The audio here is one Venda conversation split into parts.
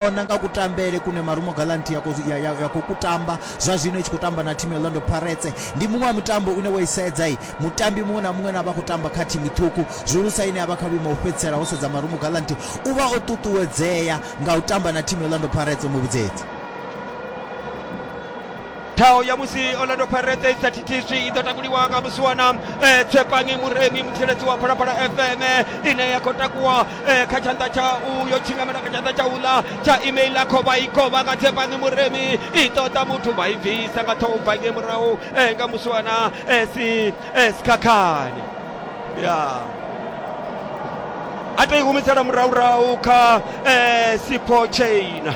vhona nga kutambele kune Marumo Gallants ya, ya, ya, ya khou kutamba zwa zwino i tshi khou tamba na thimu ya Orlando Pirates ndi muṅwe wa mutambo une wo isedza i mutambi muṅwe na muṅwe na vha khou tamba kha thimu ṱhukhu zwihulusa ine ya vha kha vhuimo ho fhedzisela ho sedza Marumo Gallants u vha o ṱuṱuwedzea nga u tamba na thimu ya Orlando Pirates muvhudzedzi thaho ya musi orlando pirates isa thithiswi i ḓo takuliwa nga musiwana eh, tshepangi muremi mutsireledzi wa phalaphala fm ine ya khou takuwa eh, kha tshanḓa tsha uyo tshingamela kha tshanḓa tsha uḽa tsha email a khovha i khovha nga tshepangi muremi i ṱoḓa muthu vha i bvisa nga ṱhoho bva nge murahu eh, nga musiwana eh, si eh, sikhakhani ya a tou i humisela murahurahu kha eh, sipho chaina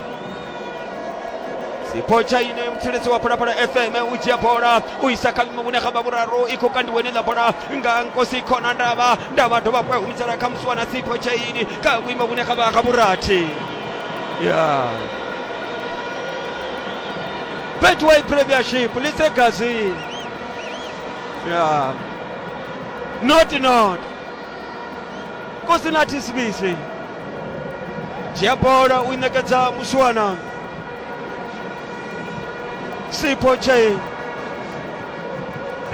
sipo chaino muthelezi wa phalaphala fm ujiya bola uisaka mimune kha mavhuraru i khou kandiwe ni ḽa bola nga nkosi khona ndavha ndavha dovha hafhu ya humisela kha musi wana sipo chaini kha vhuimo vhune kha vha kha vhurathi ya betway premiership lisegazini ya not not Kosinati Smith dzhia bola u i ṋekedza Muswana Sipho Che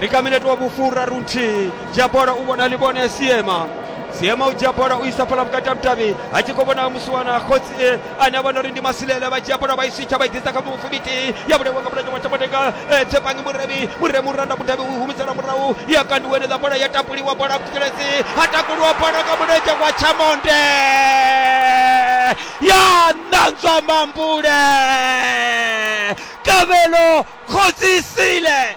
ri kha minete wa vhufura runthihi dzhia bola u vhona ḽivhone ya Siema Siema u dzhia bola u isa fhala vhukati ha vhudavhi a tshi khou vhona Muswana khotsi ana vha no ri ndi masilela vha dzhia bola vha i switsha vha i ḓisa kha mufumiti ya vhulaiwa nga mulenzhe wa tshamatenga tsepangi murevi mure muranda mudavhi u humisela murahu ya kandiwa enela bola ya tapuliwa bola kutelezi ha takuliwa bola nga mulenzhe wa tshamonde ya ṋanzwa mambule kavhelo khodzisile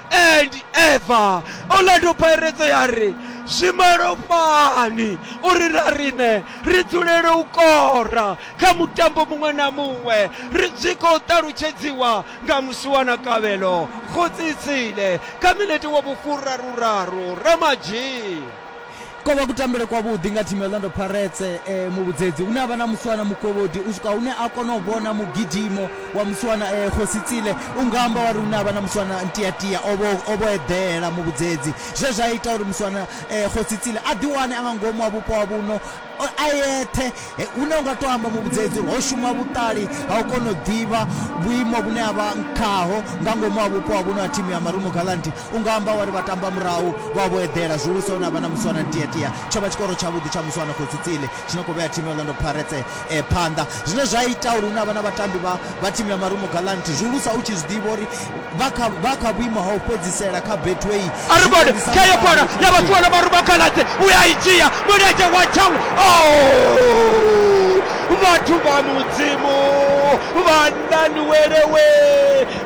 and ever orlando pirates ya ri zwi malofhani uri na riṋe ri dzulele u kora kha mutambo muṅwe na muṅwe ri zwi khou ṱalutshedziwa nga musiwana kavhelo khotsitsile kha minete wa vhufuraruraru ramadzhii Ko vha kutambele kwavhuḓi nga thimu ya Orlando Pirates eh, muvhudzedzi une a vha na musiwana mukovhodi u swika hune a kona u vhona mugidimo wa musiwana eh, Khositsile u nga amba wa ri une a vha na musiwana Ntiatia o vho o vho eḓela muvhudzedzi zwe zwa ita uri musiwana eh, Khositsile a ḓiwane a nga ngomu ha vhupo ha vhuno A yeṱhe, hune u nga tou amba muvhudzedzi uri ho shuma vhuṱali ha u kona u ḓivha vhuimo vhune a vha khaho nga ngomu ha vhupo ha vhuno ha thimu ya Marumo Gallants. U nga amba wa ri vhatambamurahu vha vho eḓela zwihulusa hune ha vha na Muswana Ntiyatia. Tsho vha tshikoro tshavhuḓi tsha Muswana Khosi Tsile tshi no khou vhea thimu ya Orlando Pirates phanḓa, zwine zwa ita uri hune ha vha na vhatambi vha thimu ya Marumo Gallants zwihulusa u tshi zwi ḓivha uri vha kha vha kha vhuimo ha u fhedzisela kha betway aribode kha yo kona ya vhathu wana maruba khaladze u ya i dzhia mulenzhe wa chang vhathu vha mudzimu vhanani welewe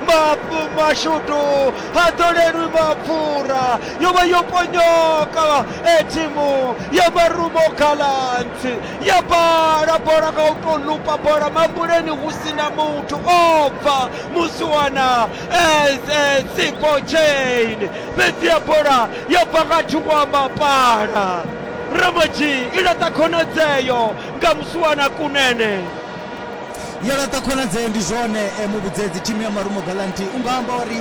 mapfu mashudu ha ḓolelwi mapfura yo vha yo ponyoka e thimu ya marumo khaladze ya bala bola nga u tou lupa bola mambuleni hu si na muthu o bva musiwana eze sipo chain fhedzi ya bola yo bva nga thungo wa mapala ramoji i laṱa khonadzeo nga musiwana kunene yo laṱa khonadzeo ndi zwone eh, muvhudzedzi thimu ya marumo galanti u nga amba uri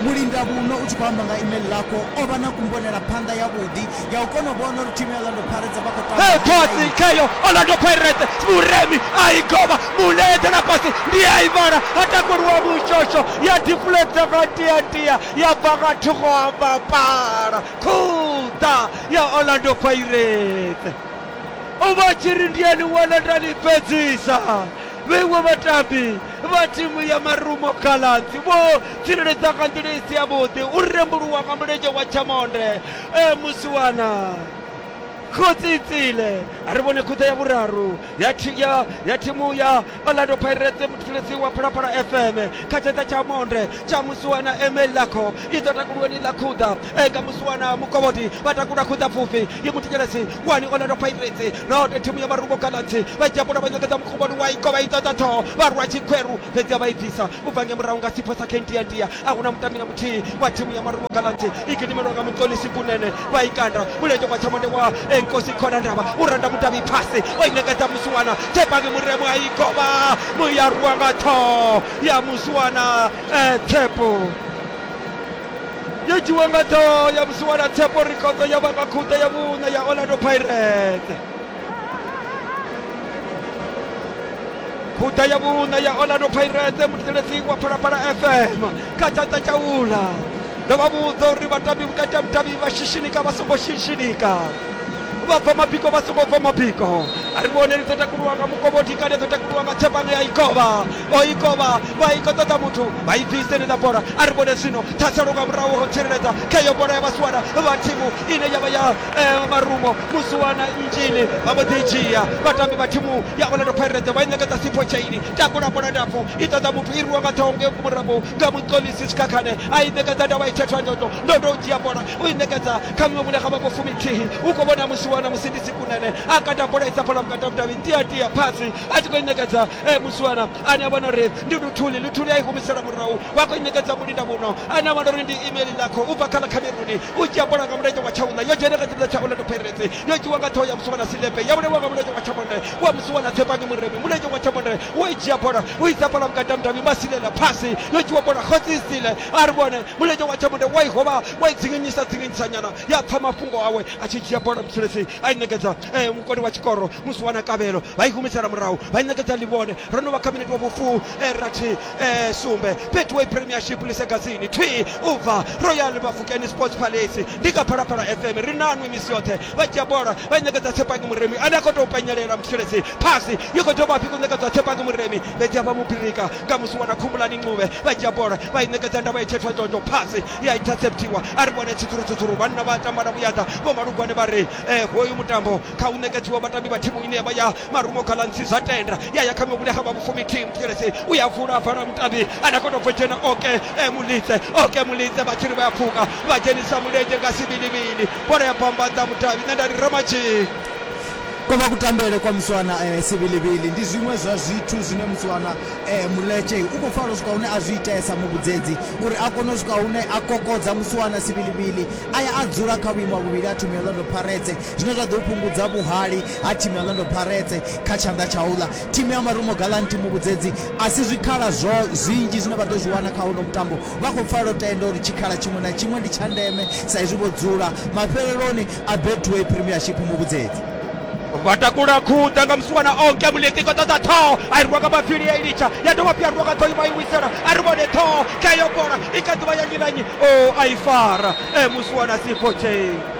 mulinda vhuno u tshi khou amba nga email lako o vha na kumbonela phanḓa yavhuḓi ya u kona u vhona uri thimu ya orlando pirates vha khou tamba khotsi kheyo orlando pirates muremi a i govha mune eḓela fhasi ndi a i vhala ha takuliwa mushosho ya deflecta nga ntiantia ya bva nga thungo ha mapala khuḓa ya orlando pirates u vha tshi ri ndi a ni wana nda ni fhedzisa vhengo vhatambi vha thimu ya marumo galanzi vho tsireledza nga nḓila i si yavhuḓi u rembuluwa nga mulenzhe wa tshamonde e musiwana khotsi itsile a ri vhone khuṱa ya vhuraru ya thi- ya- ya thimu ya orlando pirates muthuletsi wa phalaphala fm kha tsheṱa tsha monde tsha musiwana emel lakho i ḓo takuluweni ḽa khuḓa e nga musiwana mukovhoti vha takula khuḓa pfufhi i muthinyelesi wani orlando pirates nahone thimu ya marungo galaxy vha dzhapula vha nyekeza mukuvhoni wa ikovha i ṱoḓa ṱhoho vha rwa tshikhweru fhedzi a vha i bvisa u bva nge murahu nga sipho sa kendiandia a huna mutambi na muthihi wa thimu ya marumo gallants i gidimelwa nga muṱonisi kunene vha i kanda mulenzhe kwa tshamonde wa enkosi khona ndavha u randa mudavhi phasi o i ṋekedza musiwana tshepangi muremo a i govha muyarwa nga ṱhoho ya musiwana eh, tshepo yo dzhiwa nga ṱhoho ya musiwana tshepo rikhodzo ya vha nga khuṱa ya vhuṋa ya orlando pirates khuda ya vhuṋa ya orlando pirates muthelesi wa phalaphala fm kha tshanḓa tsha ula ndo vha vhudza uri vhatambi vhukati ha mudavhi vha shishinika vha songo shishinika vha bva mabiko vha songo bva mabiko a ri vhone ri ḓo takuluwa nga mukovhodi kale ḓo takuluwa nga tshephano ya ikovha o ikovha vha i khou ṱoḓa muthu vha i bviseni ḽa bola a ri vhone zwino ṱhaselo nga murahu ho tsireledza kha iyo bola ya vhasiwana vha thimu ine ya vha ya eh, marumo musuwana injini vha mbo ḓi dzhia vhatambi vha thimu ya orlando pirates vha i ṋekedza sipho chaini takula bola ndapfu i ṱoḓa muthu i rwiwa nga ṱhoho nge murahu nga muṱolisi sikhakhane a i ṋekedza ndavha i thethwa ndoto ndoto u dzhia bola u i ṋekedza kha miṅwe vhune ga vha vho fumithihi u khou vhona musiwana musindisi kunene a kata bola i sa phala vhukati ha vhudavhi tia tia phasi a tshi khou i ṋekedza eh, musiwana ane a vhona uri ndi luthuli luthuli a i humisela murahu vha khou i ṋekedza mulinda muno ane a vhona uri ndi email lakho u bva kha ḽa khameruni u dzhia bola nga mulenzhe wa tshauna yo dzhena kha tshipiḓa tsha orlando pirates yo dzhiwa nga ṱhoho ya musuwa na silepe ya vhulaiwa nga mulenzhe wa tshamonde wa musuwa na tshepangi muremi mulenzhe wa tshamonde wo i dzhia bola u isa bola vhukati ha mudavhi masilela phasi yo dzhiwa bola khotsi isile a ri vhone mulenzhe wa tshamonde wa i hovha wa i dzinginyisa dzinginyisa nyana ya pfa mafhungo awe a tshi dzhia bola mutshilesi a i ṋekedza eh, mukoni wa tshikoro musuwa na kavhelo vha i humisela murahu vha i ṋekedza ḽivhone ro no vha kha minete wa vhufu eh, rathi e sumbe betway premiership lisegazini thwi u bva royal bafukeni sports palace ndi kha phalaphala fm ri nanwi misi yoṱhe vha dzhia bola vha i ṋekedza tshepangi muremi ane a khou tou penyelela musheledzi phasi yo khou dovha hafhi khou ṋekedzwa tshepangi muremi fhedzi a vha mubirika nga musi wana khumbulani ncube vha dzhia bola vha i ṋekedza ndavha itshethwa ndondo phasi ya interceptiwa a ri vhone tsitsurutsutsuru vhanna vha tamba na vhuyaḓa vho malugwane vha ri eh, hoyu mutambo kha u ṋekedziwa vhatambi vha thimu ine yavha ya marumo galansi zwa tenda ya ya kha mivhule ha vha vhufumi team tshelesi u ya vula a vala mutambi ane a kona u bvo dzhena oke eh, mulitse oke mulitse vha tshiri vha ya pfuka vha dzhenisa mulenzhe nga sibilibili bola ya bambadza mudavhi nṋe nda ri ramatshii kovha kutambele kwa muswana eh, sibilibili ndi zwiṅwe zwa zwithu zwine muswana eh, muletshe u khou fara u swika hune a zwi itesa muvhudzedzi uri a kone u swika hune a kokodza muswana sibilibili a ya a dzula kha vhuimo ha vhuvhili a thumia londo pharetse zwine zwa ḓo fhungudza vhuhali ha thimu ya Orlando Pirates kha tshanḓa tsha uḽa thimu ya Marumo Gallants thimu vhudzedzi a si zwikhala zwo zwinzhi zwine vha ḓo zwi wana kha uno mutambo vha khou pfala tenda uri tshikhala tshiṅwe na tshiṅwe ndi tsha ndeme sa izwi vho dzula mafheleloni a Betway Premiership mu vhudzedzi vha takula khuḓa nga musiwana onke muleti ko ṱoḓa ṱhoho a i rwa nga mafhili ya i litsha ya dovha phi ya rwa nga ṱhoho ima i wisela a ri vhone ṱhoho kha yo bola i kha ḓuvha ya nnyi na nnyi o a i fara e musiwana sipho tshei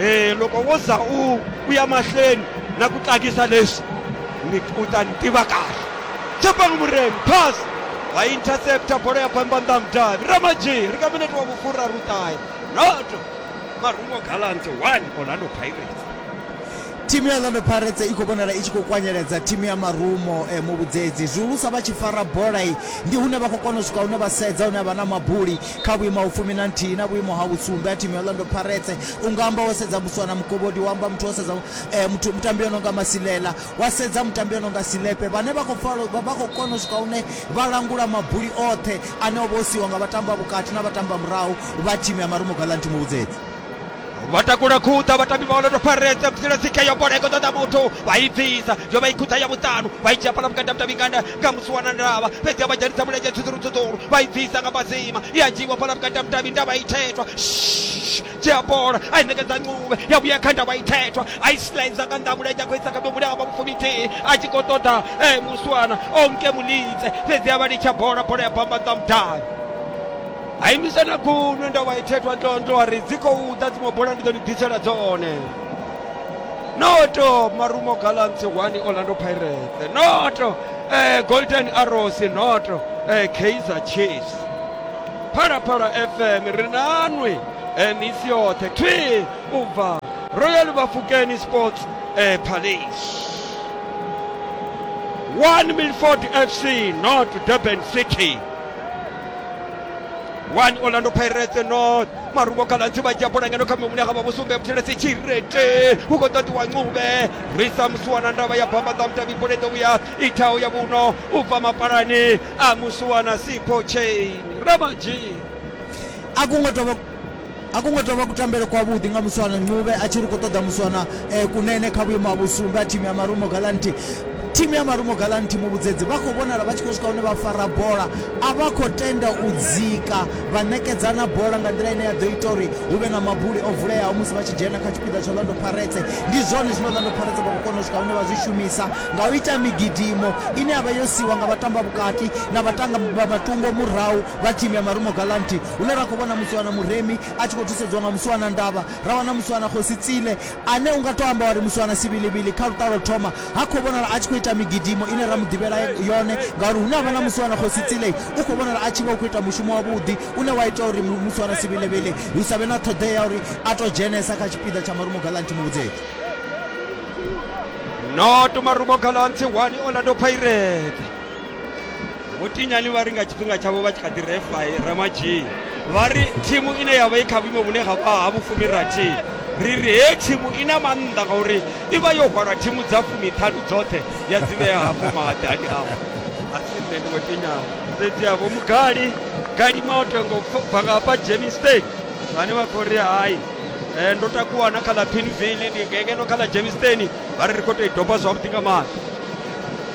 e loko wo za u u ya mahlweni na ku tsakisa leswi u ta ni tiva kahle chapang muremi pass va intercepta bolo ya bambandam davi ramaji ri ka minete wa vukulu ra rutayi noto marungo gallant 1 orlando pirates thimu ya orlando pirates i khou vhonala i tshi khou kwanyeledza thimu ya marumo eh, muvhudzedzi zwihulusa vha tshi fara bola i ndi hune vha khou kona u swika hune vha sedza hune vha na mabuli Kha vhuimo ha vhufumi na nthihi na vhuimo ha vhusumbe ha thimu ya Orlando Pirates, u nga amba wo sedza Muswana Mugobodi, wa amba muthu wo sedza muthu, mutambi o no nga Masilela, wa sedza mutambi o no nga Silepe vhane vha khou falo, vha khou kona u swika hune vha langula mabuli oṱhe ane o vha o siiwa nga vhatambi vha vhukati na vhatambi vha murahu vha thimu ya Marumo Gallants Muvhudzedzi. vha takula khuḓa vhatambi vha orlando pirates vhudzila dzikhe yo bola i khou ṱoḓa muthu vha i bvisa yo vha i khuḓa ya vhuṱanu vha i dzhia fhala vhukati ha mudavhingana nga musi wana ndavha fhedzi a vha dzhenisa mulenzhe tshuḓurutsuḓuru vha i bvisa nga mazima i a dzhiiwa fhala vhukati ha mudavhi ndavha i thetwa dzhia bola a i ṋekedza ncube ya vhuya kha ndavha i thetwa a i sliza nga nnḓa mulenzhe a khou isa kha mihumbulo ya vha vhufuminthihi a tshi khou ṱoḓa eh, muswana onke mulidze fhedzi a vha litsha bola bola ya bamba nnḓa mudavhi a imisa na guṅwe ndo vha ithethwa tonto a ri dzi khou ḓa dziṅwe bola ndi ḓo ni ḓisela dzone noto marumo galants one orlando pirates noto eh, golden arrows noto eh, kaizer chiefs phalaphala fm ri nanwi eh, misi yoṱhe thwi u bva royal bafukeni sports eh, palace one milford fc not durban city 1 orlando pirates north marumo kalanzi vha dzhia bola ngeno kha mihumbulo ya kha vha vho sumbe vhuthelesi tshirete hu khou ṱoḓiwa ncube risa musuwana ndavha ya bamba ḓa mutavhi bola i ḓo vhuya ithaho ya vhuno u bva mapalani a musuwana sipho chain ramanji a kungo tovha A ku ngo tou vha kutambele kwavhuḓi nga Muswana Ncube a tshi ri khou ṱoḓa Muswana eh, Kunene kha vhuimo ha vhusumbe ha thimu ya Marumo Galanti. Thimu ya Marumo Galanti muvhudzedzi vha khou vhonala vha tshi khou swika hune vha fara bola, a vha khou tenda u dzika vha ṋekedzana bola nga nḓila ine ya ḓo ita uri hu vhe na mabuli o vuleaho musi vha tshi dzhena kha tshipiḓa tsha Orlando Pirates. Ndi zwone zwine Orlando Pirates vha khou kona u swika hune vha zwi shumisa nga u ita migidimo ine ya vha yo siwa nga vhatamba vhukati na vhatanga vha matungo murahu vha thimu ya Marumo Galanti hune ra khou vhona Musiwana Muremi a tshi khou thusedziwa nga Musiwana Ndavha, ra wana Musiwana Khosi Tsile ane u nga tou amba wa ri Musiwana Sivhilivhili kha luṱa lwo thoma ha khou vhonala a tshi khou ita migidimo ine ra mu ḓivhela yone ngauri hune ha vha na Musiwana Khosi Tsile u khou vhonala a tshi vha u khou ita mushumo wavhuḓi une wa ita uri Musiwana Sivhilivhili hu sa vhe na ṱhoḓea ya uri a tou dzhenesa kha tshipiḓa tsha Marumo Galanti Muvhudzedzi. Not Marumo Galanti 1 Orlando Pirates. vho tinyani vha ri nga tshifhinga tshavho vha tshi kha ḓi refa ramadzhii vha ri thimu ine ya vha i kha vhuimo vhune ha vha ha vhufumi rathi ri ri he thimu i na maanḓa ngauri i vha yo hwala thimu dza fumiṱhanu dzoṱhe ya dzi vhea hafho mahadani avho a si nṋe ndi vho tinyani fhedzi avho mugali gali moto ngo bva nga hafha jemistake vhane vha khou ri hai Eh, ndo takuwa na kha ḽa pinville ndi ngengeno kha ḽa jemisteni vha ri ri khou tou i doba zwavhuḓi nga maanḓa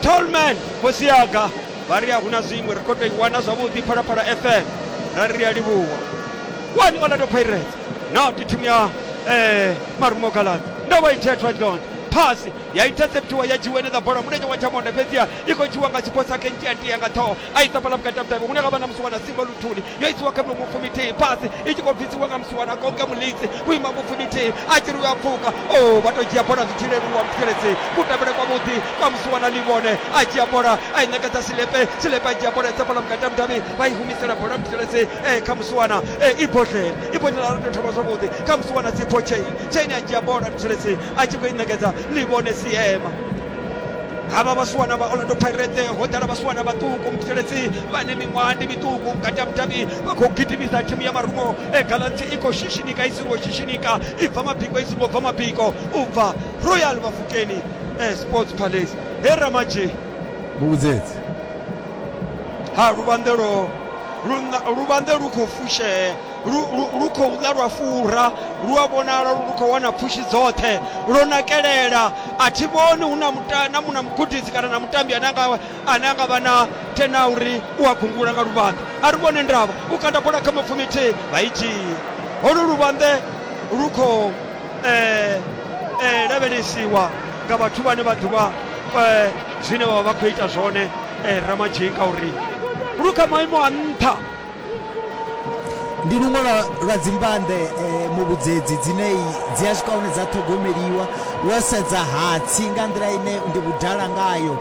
tolman khosi yanga vha ri a huna zwiṅwe ri khou tou i wana zwavhuḓi phalaphala fm ra ri ri a livhuwa wani orlando pirates no ndi thimu ya eh, marumo galad ndo vha itea tradlond phasi ya interceptiwa ya dzhiwa ene ḽa bola mulenzhe wa tshamonde fhedziha i khou dzhiwa nga tshiphosa kentia ntia nga ṱhoho aisa fhala vhukati ha mutevhe hune havha na musiwana simba luthuli yo isiwa kha miṅwe mupfumi thihi fhasi i tshi khou bvisiwa nga musiwana konke mulitsi vhuima mupfumi thihi a tshi ri a pfuka o oh, vha to dzhia bola zwi tshi leluwa muthelezi kutambele kwa vhuḓi kwa musiwana livhone a dzhia bola a i ṋekedza silepe silepe a dzhia bola isa fhala vhukati ha mudavhi vha i humisela bola muthelezi e eh, kha musiwana e eh, i bodlele i bodlele ara to thoma zwavhuḓi kha musiwana sipho chain chain a dzhia bola muthelezi a tshi khou i ṋekedza livhone siema havha vhasiwana vha orlando pirate ho ḓala vhasiwana vhaṱuku muthetshelesi vhane miṅwaha ndi miṱuku vhukati ha mudavhi vha khou gidimisa thimu ya marumo e galanti i khou shishinika i singo shishinika i bva mabiko i singo bva mabiko u bva royal mafukeni e sports palace he ramadzhi muvhudzedzi ha luvhanḓelo luvhanḓe lu khou fushea lu, lu, lu khou ḓa lwa fura lu a vhonala lu khou wana pfushi dzoṱhe lwo nakelela a thi vhoni hu na muta- na mu- na mugudisi kana na mutambi ane anga ane anga vha na tena uri u a gungula nga luvhanḓe a ri vhone ndavha u kanda bola kha mapfumi thihi vha i dzhia holu luvhanḓe lu khou eh, eh, lavhelesiwa nga vhathu vhane vha ḓivha eh, zwine vha vha vha khou ita zwone eh, ramadzhika uri lu kha maimo a nṱha ndi luṅwe lwa, lwa dzimbande eh, muvhudzedzi dzine dzi a swika hune dza ṱhogomeliwa wo sedza hatsi nga nḓila ine ndi vhudala ngayo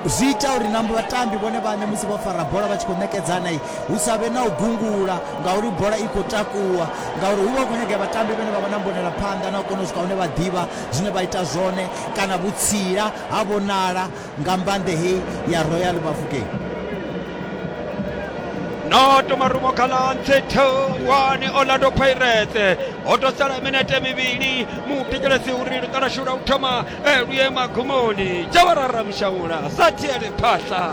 zwi ita uri na vhatambi vhone vhane musi vho fara bola vha tshi khou ṋekedzana hu sa vhe na u gungula ngauri bola i khou takuwa ngauri hu vha hu khou nyagea vhatambi vhane vha vha na mbonela phanḓa na u kona u swika hune vha ḓivha zwine vha ita zwone kana vhutsila ha vhonala nga mbande hei ya royal bafokeng no tomarumo khalantshe one orlando pirates ho to sala minete mivhili mutekelesi uri luṱalashula u thoma eh, luye magumoni jawarara mushaula sa tiele phahla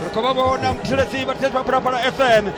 ri khou vha vhona muthetshelesi vhathetshelesi vha phalaphala fm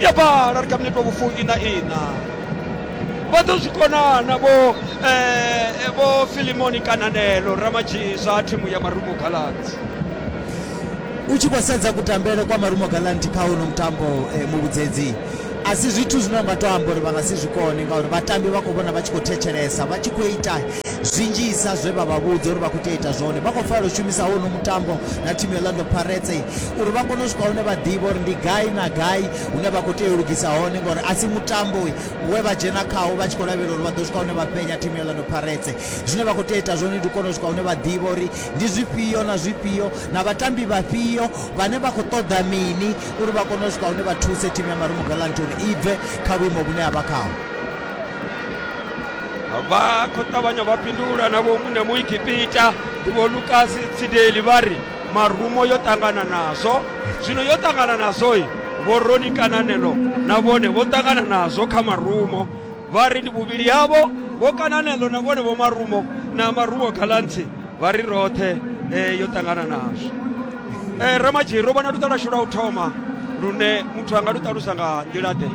ya vhala ri kha minete wa vhufumi na ina vha ḓo zwi konana vho eh, vho filimoni kananelo ramadzhisa a thimu ya marumo galanzi u tshi khou sedza kutambele kwa marumo galanti kha uno mutambo eh, muvhudzedzi a si zwithu zwine unga to amba uri vha nga si zwi kone ngauri vhatambi vha khou vhona vha tshi khou thetshelesa vha tshi khou ita Zwinzhisa zwe vha vha vhudza uri vha khou tea u ita zwone, vha khou fanela u shumisa hono mutambo na thimu ya Orlando Pirates uri vha kone u swika hune vha ḓivha uri ndi gai na gai hune vha khou tea u lugisa hone ngauri a si mutambo we vha dzhena khawo vha tshi khou lavhelela uri vha ḓo swika hune vha penya thimu ya Orlando Pirates. Zwine vha khou tea u ita zwone ndi u kona u swika hune vha ḓivha uri ndi zwifhio na zwifhio na vhatambi vhafhio vhane vha khou ṱoḓa mini uri vha kone u swika hune vha thuse thimu ya Marumo Gallants uri i bve kha vhuimo vhune ya vha khaho. vha khou ṱavhanya vha fhindula na vho muṋe muikipita ndi vho lukasi tsideli vha ri marumo yo ṱangana nazwo zwino yo ṱangana nazwoi vho roni kananelo na vhone vho ṱangana nazwo kha marumo vha ri ndi vhuvhili havho vho kananelo na vhone vho marumo na marumo galantsi vha ri roṱhe eh, yo ṱangana nazwo eh, ramadzhiri u vhona luṱa lwashu lwa u thoma lune muthu anga lu ṱalusa nga nḓila ḓe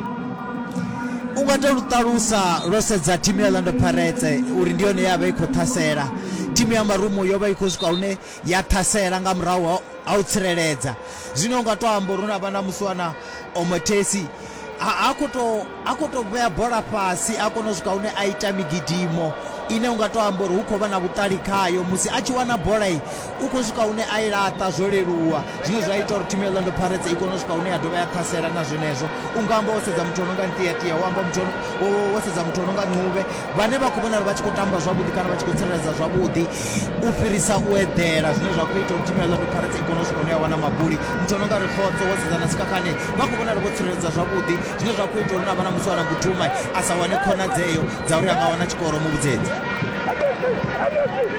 u nga to lu ṱalusa lwo sedza thimu ya lando paretse uri ndi yone ya vha i khou ṱhasela thimu ya marumu yo vha i khou swika hune ya ṱhasela nga murahu a u tsireledza. Zwine u nga tou amba uri hu na vha na musiwana o Mathesi a a khou tou a khou tou vhea bola fhasi a kona u swika hune a ita migidimo ine u nga tou amba uri hu khou vha na vhuṱali khayo musi a tshi wana bola i u khou swika hune a i laṱa zwo leluwa zwine zwa ita uri thimu ya Orlando Pirates i kone u swika hune ya dovha ya ṱhasela na zwenezwo u nga amba wo sedza muthu o no nga Ntiatia wo amba muthu wo sedza muthu o no nga Ncube vhane vha khou vhonala vha tshi khou tamba zwavhuḓi kana vha tshi khou tsireledza zwavhuḓi u fhirisa u eḓela zwine zwa khou ita uri thimu ya Orlando Pirates i kone u swika hune ya wana maguli muthu o no nga ri khotso wo sedza na sikhakhane vha khou vhonala vho tsireledza zwavhuḓi zwine zwa khou ita uri na vha na musi wana guduma a sa wane khonadzeo dza uri a nga wana tshikoro muvhudzedzi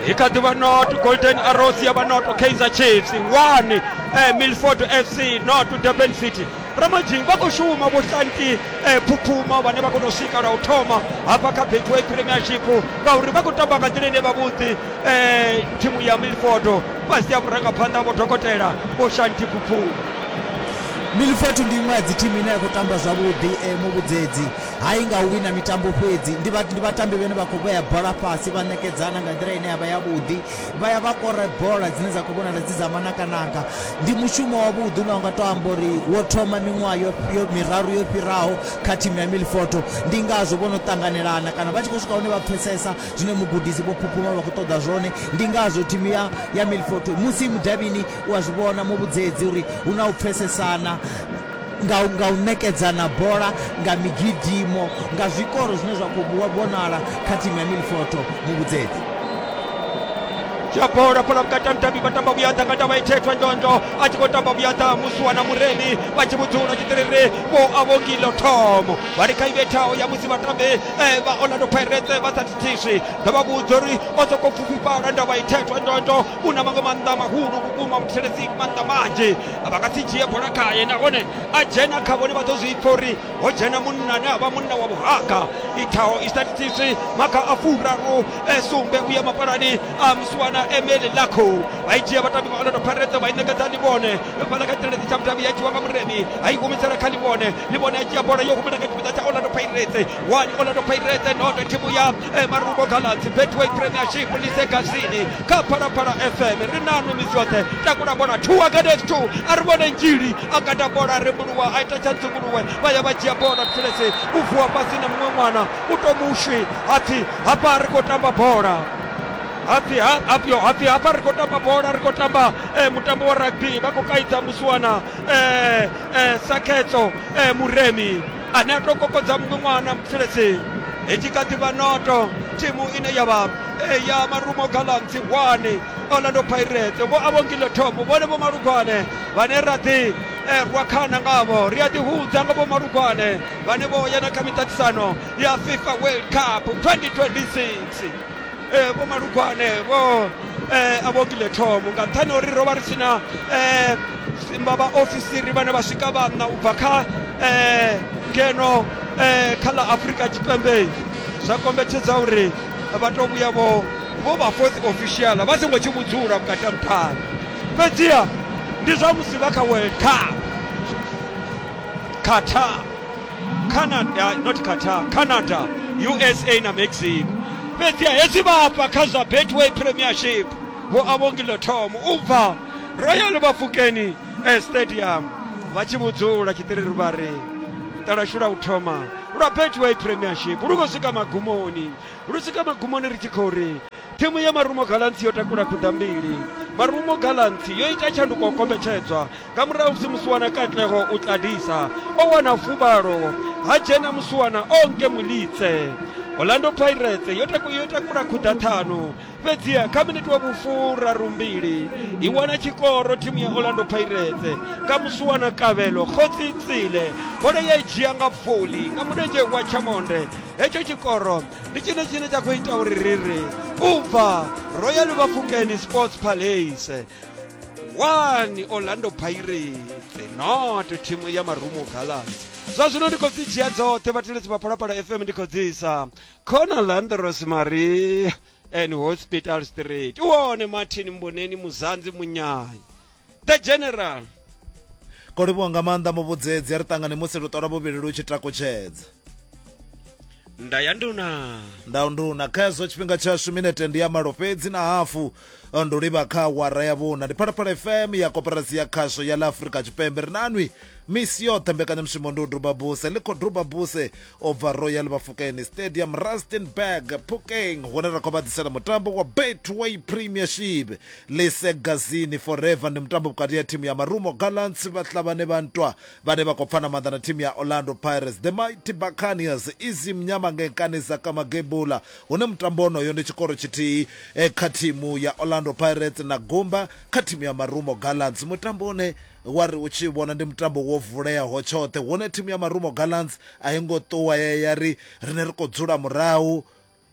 i kha ḓi vha not golden arrows ya vha not kaizer chiefs 1 eh, milford fc not durban city Ramadzhing vha khou shuma vhuhlanti eh, phuphuma vhane vha kona u sika lwa u thoma hafha kha betway premiership ngauri vha khou tamba nga nḓila ine vhavhuḓi eh, thimu ya milford fhasi ya vhurangaphanḓa vho dokotela vho shanti phuphuma milford ndi iṅwe ya dzi thimu ine ya khou tamba zwavhuḓi eh, muvhudzedzi hai nga u wina mitambo fhedzi ndi vhatambi vhene vha khou vhea bola fhasi vha ṋekedzana nga nḓila ine ya vha yavhuḓi vha ya vha kore bola dzine dza khou vhonala dzi dza manakanaka ndi mushumo wavhuḓi une wa nga to amba uri wo thoma miṅwaha yo yo miraru yo fhiraho kha thimu ya milfoto ndi ngazwo vho no ṱanganelana kana vha tshi khou swika hune vha pfesesa zwine mugudisi vho phuphuma vha khou ṱoḓa zwone ndi ngazwo thimu ya ya milfoto musi mudavhini u a zwi vhona muvhudzedzi uri hu na u pfesesana nga, nga u ṋekedzana bola, nga migidimo, nga zwikoro zwine zwa khou vhonala kha thimu ya Milford. Mu vhudzedze. dzhia bola fhala vhukati ha mutambi vha tamba vhuyaḓa nga ndavha ithethwa ndondo a tshi khou tamba vhuyaḓa musuwa na muremi vha tshi vhudzula tshiṱiriri vho avhongilo thomo vha ri kha i vhethaho ya musi vhatambi eh, vha orlando pirates vha sa thithiswi ndo vha vhudza uri o sokou pfufhifhala ndavha ithethwa ndondo kuna maṅwe maanḓa mahulu vhukuma muthetshelesi maanḓa manzhi vha nga si dzhie bola khaye nahone a dzhena kha vhone vha ḓo zwi pfa uri ho dzhena munna ane a vha munna wa vhuhaka ithaho i statistics maga a furaru e sumbe u ya mapalani a msuwana emeli lakho vha i dzhia vhatambi vha orlando pirates vha i ṋekedza livhone fhala kha tshireledzi tsha mutambi ya dzhiwa nga muremi a i humisela kha livhone livhone a dzhia bola yo humela kha tshipiḓa tsha orlando pirates one orlando pirates noto thimu ya emaruko galadzi betway premiership lisegazini kha phalaphala fm ri nanu misi yoṱhe takula bola two against two a ri vhone njili a kata bola ri mbuluwa a ita tsha nzunguluwe vha ya vha dzhia bola thulesi u vuwa fhasi na muṅwe ṅwana u to mushwi hapfi hafha ri khou tamba bola hapfi ha- hapfio hapfi hafha ri khou tamba bola ri khou tamba eh, mutambo wa rugby vha khou kaidza musiwana eh, eh, sakhetso eh, muremi ane a tou kokodza muṅwe ṅwana mutheledzini i tshi kha ḓi vha noto thimu ine ya vha eh, ya marumo gallants one orlando pirates vho avhongile thomo vhone vho malugwane vhane ra ḓi eh, rwa khana ngavho ri a ḓihudza nga vho malugwane vhane vho ya na kha miṱaṱisano ya fifa world cup 2026 eh, vho malugwane vho eh, a vho kile thomo nga nṱhani uri ro vha ri sina eh, simba vhaofisiri vhane vha swika vhanna u bva kha eh, ngeno eh, kha ḽa afurika tshipembe zwa kombetshedza uri vha tou vhuya vho vho vha fourth official vha songo tshi vhudzula vhukati ha muṱhani fhedziha ndi zwa musi vha kha world cup qatar canada not qatar canada usa na mexico fhedzi hezwi vha hafha kha zwa betway premiership vho avhongilo tom u bva royal vhafukeni eh, stadium vha tshi vhudzula tshiṱiriri vha ri talashu lwa u thoma lwa betway premiership lu khou swika magumoni lu swika magumoni ri tshi khou ri thimu ya marumo galantsi yo takula khuḓa mbili marumo galantsi yo ita tshanduko kombetshedzwa nga murahu musi musiwana katlego o tladisa o wana fuvhalo ha dzhena musiwana o nke mulitse orlando pirates yo takula khuḓa ṱhanu fhedziha kha miniti wa vhufuraru mbili i wana tshikoro thimu ya orlando pirates nga musiwana kavhelo khotsi tsile bola ya i dzhia nga foli nga mulenzhe wa tshamonde hetsho tshikoro ndi tshine tshine tsha khou ita uri ri ri u bva royal vhafukeni sports palace 1 orlando pirates not thimu ya marumo gallants zwa zwino ndi khou dzi dzhia dzoṱhe vhateledzi vha phalaphala fm ndi khou dzisa khona landros marie and hospital street u wone martin mboneni muzanzi munyayi the general kolivhuwa nga maanḓa muvhudzedzi a ri ṱangane musi luṱola vhuvhili lu tshi takutshedza nda ya nduna ndau nduna kha hezwo tshifhinga tshashu minete ndi ya malo fhedzi na hafu ndo livha kha wara ya vhuna ndi phalaphala fm ya koperasi ya khasho ya la afurika tshipembe ri nanwi misi yoṱhe mbekanyamushumo ndi u duba buse ḽi khou duba buse o bva royal vhafukeni stadium rustenburg pukeng hune ra khou vha ḓisela mutambo wa betway premiership lisegazini forever ndi mutambo vhukati ya thimu ya marumo gallants vhahlabane vha ntwa vhane vha khou pfana maanḓa na thimu ya Orlando Pirates, The Mighty Buccaneers i zwi mnyama ngei nkani dza Kamagebula hune mutambo wonoyo ndi tshikoro tshithihi kha thimu ya Orlando Pirates na gumba kha thimu ya Marumo Gallants, mutambo une wa ri u tshi vhona ndi mutambo wo vuleaho tshoṱhe hune thimu ya Marumo Gallants a i ngo ṱuwa ya ya ri riṋe ri khou dzula murahu.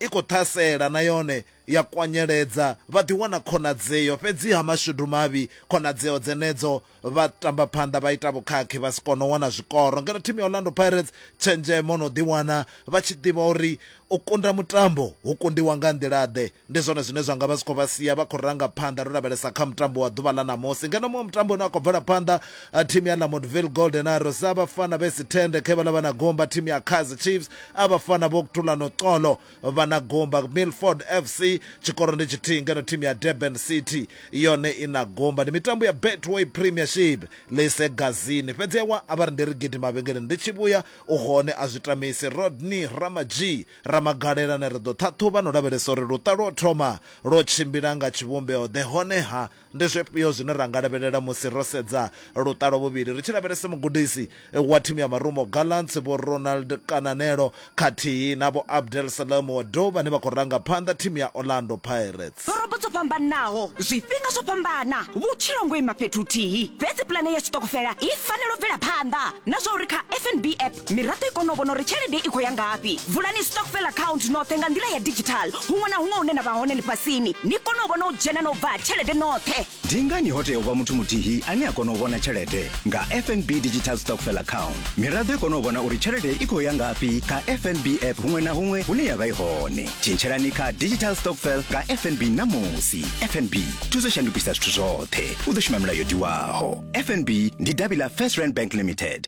i khou ṱhasela na yone ya kwanyeledza, vha ḓi wana khonadzeo, fhedziha mashudu mavhi khonadzeo dzenedzo vha tamba phanḓa vha ita vhukhakhi vha si kone u wana zwikoro. Ngeno thimu ya Orlando Pirates tshenzhemo no ḓi wana vha tshi ḓivha uri u kunda mutambo hu kundiwa nga nḓila ḓe, ndi zwone zwine zwa nga vha zwi khou vha sia vha khou ranga phanḓa ro lavhelesa kha mutambo wa ḓuvha ḽa ṋamusi. Ngeno muṅwe mutambo une wa khou bvela phanḓa A thimu ya Lamontville Golden Arrows abafana besithende khe balaba nagomba thimu ya Kaizer Chiefs abafana bokuthula noxolo banagomba Milford FC tshikoro ndi tshithihi ngeno thimu ya Durban City yone inagomba ndi mitambo ya Betway Premiership lise gazini fhedzi ewa a vha ri ndi ri gidi mavhengeleni ndi tshi vhuya u hone a zwi tamisi Rodney Ramadzhii Ramagalela ne ri ḓo ṱhaṱhuvha no lavhelesa uri luṱa lwo thoma lwo tshimbila nga tshivhumbeo ḓe honeha Ndi zwifhio zwine ra nga lavhelela musi ro sedza luṱa lwa vhuvhili ri tshi lavhelesa mugudisi wa thimu ya Marumo Gallants Vho Ronald Kananelo khathihi na Vho Abdel Salem Wadoo vhane vha khou ranga phanḓa thimu ya Orlando Pirates? Ḓorobo dzo fhambanaho, zwifhinga zwo fhambana, vhutshilo ngo ima fhethu huthihi. Fhedzi pulane ya tshiṱokofela i fanela u bvela phanḓa. Na zwa uri kha FNB app Miraḓo i kone u vhona uri tshelede i khou ya ngafhi. Vulani stokvel account noṱhe nga nḓila ya digital huṅwe na huṅwe hune na vha hone ḽifhasini, ni kone u vhona u dzhena na u bva ha tshelede noṱhe. Ndi ngani ho tea u vha muthu muthihi ane a kona u vhona tshelede? Nga FNB Digital Stokvel Account, miraḓo i kone u vhona uri tshelede i khou ya ngafhi kha FNB app huṅwe na huṅwe hune ya vha i hone. Tshintshelani kha Digital Stokvel nga FNB ṋamusi. FNB, thusa u shandukisa zwithu zwoṱhe. U ḓo shuma mulayo o tiwaho. FNB ndi davhi ḽa First Rand Bank Limited.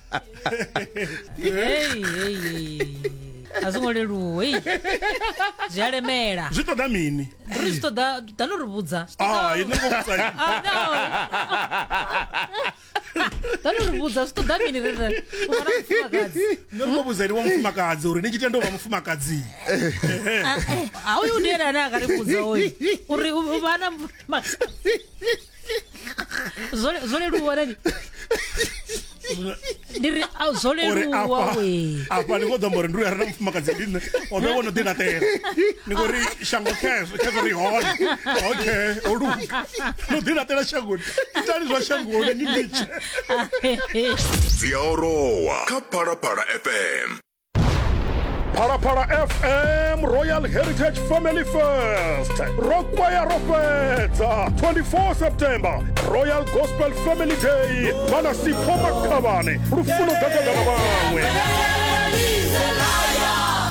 Hey, hey, hey. a zwi ngo leluwa hey. zwi a lemela zwi ṱoḓa mini ri zwi ṱoḓa ḓa no ri vhudza Ah, ini ngo vhudza ini. Ah, no. ḓa no ri vhudza zwi ṱoḓa mini ri ri u fana mufumakadzi Nṋe ndo vhudza ene wa mufumakadzi uri ni tshi tenda u vha mufumakadzi a uyu ndi ene ane a ka ri vhudza oyu uri u u vha na mufumakadzi zwo zwo leluwa rani ndi ri a zwo uri leluwa afha we afha ni khou ḓo amba uri ndi uya re na mufumakadzi ndi nṋe o ḓo vhono ḓi laṱela ni khou ri shango khezwo khezwo ri hone okay o luga no ḓi laṱela shangoni itani zwa shangoni ni litshe dzi a orowa kha phalaphala fm phalaphala fm royal heritage family fest ro kwaya ro fhedza 24 september royal gospel family day vhana sipho makhavhane lufuno gagada na vhaṅwe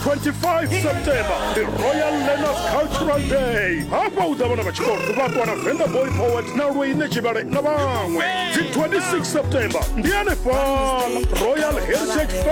25 september the royal learners cultural day hafha u ḓa vhana vha tshikolo vhakwa na venda boy poet na lweine tshivhale na vhaṅwe dzi 26 september ndi anefhala royal heritage